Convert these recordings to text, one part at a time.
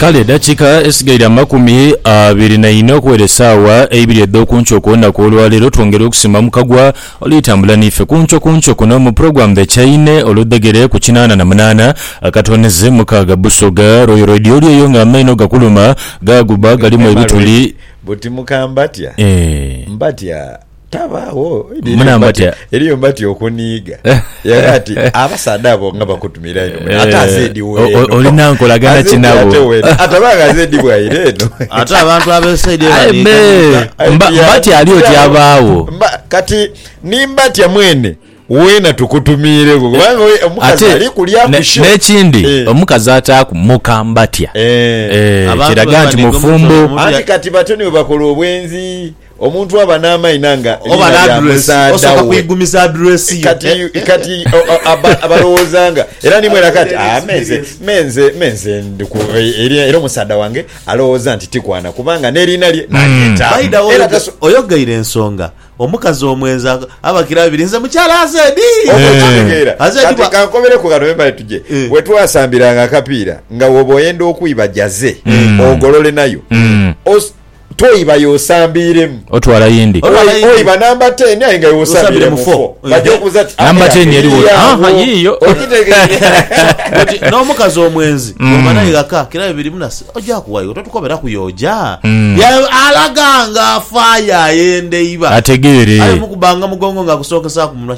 Kale edakiika esigaire amakumi abiri na ina okuwera esaawa eibiri edh'oku nkyo ku lunaku olwa leero, twongera okusiima Mukagwa oli tambula n'ife ku nkyo ku nkyo kuno mu pulogulaamu The Chaine oludhegere ku kinaana na munaana akatoonheze mukaaga Busoga Royal Radio oli eyo nga amaino gakuluma gaaguba galimu ebituli. Buti mukambati a mbatya. tabaawo eriyo mbati okuniiga era ati abasaadha abo nga bakutumira ino eh, ate azedi weeno olina nkolagana kinabo atabanga azedi bwaire eno ate abantu abesaidi mbati ali oti abaawo kati nimbatya mwene wena tukutumiire kubanga omukazi ali kulya kusho n'ekindi eh. omukazi ataaku muka mbatya eh. kiraga nti mufumbo anti kati batyo nibo bakola obwenzi Omuntu aba n'amaina nga liina lya musaadha we. Kati, kati aba, abalowooza nga. Era ni mwena kati, Ah, me nze, me nze, me nze ndi ku, eri, era omusaadha wange alowooza nti tikwana, kubanga n'eriina lye nalyetaamu. By the way, oyogeire ensonga. Omukazi omwenzi abakira abiri nze mukyala Azedi. Oba okitegeera. Azedi Kati bwa. kankomereku ghano wembale tuje. Eh. We twasambiranga akapiira nga woba oyenda okwiba jaze ogolole nayo. Os, Toiba y'osambiiremu. Otwala yindi. Oiba namba teni aye nga y'osambiire mu fo. Baja okubuuza ti, Namba teni eri wa? Aha, yiiyo. Oti n'omukazi omwenzi bw'oba naye ghaka kiraabe birimu na si, oja kuwa iwe. Totukoberaku y'oja. Alaga ng'afaayo ayenda eiba. Ategeere. Aye mukubbanga mugongo ng'akusookesaaku munwa.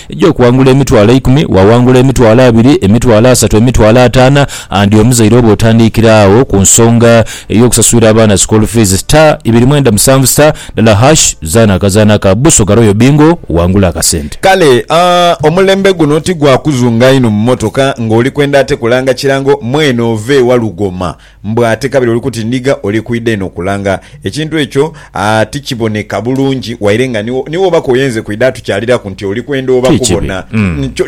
egy'okuwangula emitwalo eikumi, waawangula emitwalo abiri, emitwalo asatu, emitwalo ataana and omuzaire oba otandiikira agho ku nsonga ey'okusasulira abaana school fees star ibiri mwenda musanvu star ndala hash zaana akazaana ka Busoga Royal Bingo wangule akasente. Kale aah omulembe guno ti gwa kuzunga inho mu motoka ng'oli kwenda ate kulanga kirango mwene ova ewa lugoma. Mbu ate kabiri oli kuti ndiga oli kwidha eno kulanga. Ekintu ekyo ti kiboneka bulungi waire nga ni wobako oyenze kwidha atukyaliraku nti oli kwenda oba kubona.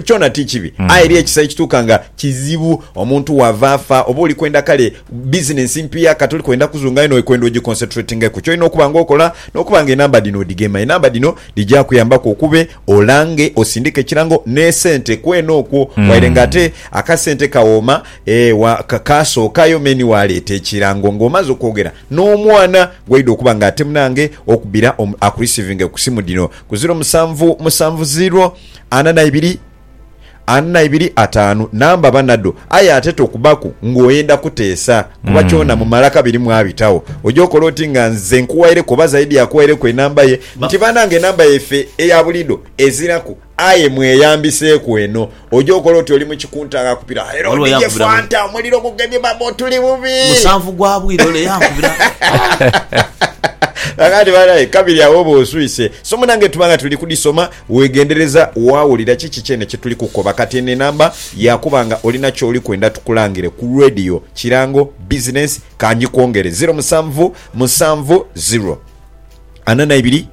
Kyona ti kibi. Aye eriyo ekisa ekituuka nga kizibu omuntu wava afa oba oli kwenda kale bizinensi mpiya kati oli kwenda kuzunga aye n'oli kwenda ogikonsetuletingeku. Kyolina okuba nga okola n'okuba nga enamba dhino odhigema. Enamba dhino dhija kuyambaku okube olange osindike ekirango n'esente kwene okwo waire nga ate akasente kawooma. Ee, wa, ka, kaasookayo me ni waaleeta ekirango nga omaze okwogera n'omwana gw'oidha okuba nga ate munange okubira omu, akurisiivinge ku simu dhino ku ziro musanvu musanvu ziro ana na ibiri ana na ibiri ataanu namba ba nadho. Aye ate tokubaku nga oyenda kuteesa kuba kyona mu malaka biri mwabitagho. Oja okola oti nga nze nkuwaireku oba zaidi akuwaireku enamba ye nti banange enamba yaife eya buliidho eziraku Aye mweyambiseeku eno. Oja okola oti oli mu kikunta ghakupira era Ghaligho odhighe yankubira mu. fanta omuliro gugemye baba otuli bubi. Musanvu gwa bwire ole yankubira. Kakati banaye kabiri agho oba oswise. Somo nange tuba nga tuli kudhisoma wegendereza wawulira kiki kyene kyetuli kukoba. Kati eno enamba yakuba nga olina kyoli kwenda tukulangire ku radio, kirango, business, kanjikwongere ziro musanvu musanvu ziro. Ana na ibiri,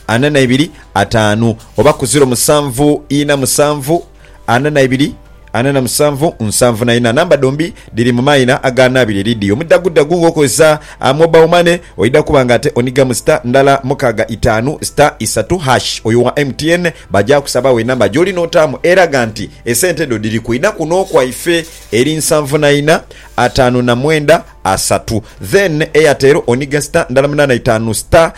ana na ibiri, ataanu, oba ku ziro musanvu ina musanvu, ana na ibiri, ana na musanvu, nsanvu na ina. Namba dhombi dhiri mu maina aganaabire eri dhi. Omudhagudhagu nga okozesa Mobile Money, oidha kuba nga ate onhigamu star ndala mukaaga itaanu star isatu hash. Oyo owa MTN baja kusabagho enamba gyoli n'otaamu eraga nti esente dho dhiri kwidha kuno kwaife eri nsanvu na ina, ataanu na mwenda, asatu then Airtel onige star ndala munana itaanu star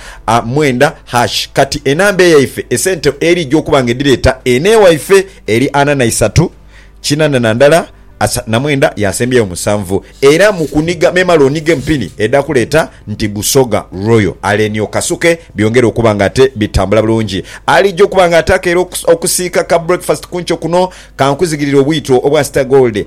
mwenda hash kati enamba eyaife esente erija okuba nga edhireta eno ewaife eri ana na isatu kinana na ndala asa na mwenda yasembyeyo musanvu era mukuniga memale onigemu pini edha kuleta nti busoga royal aleni okasuke byongere okuba nga ate bitambula bulungi alija okuba nga ate akeera okusiika ka breakfast kunkyo kuno kankuzigirire obwito obwa star gold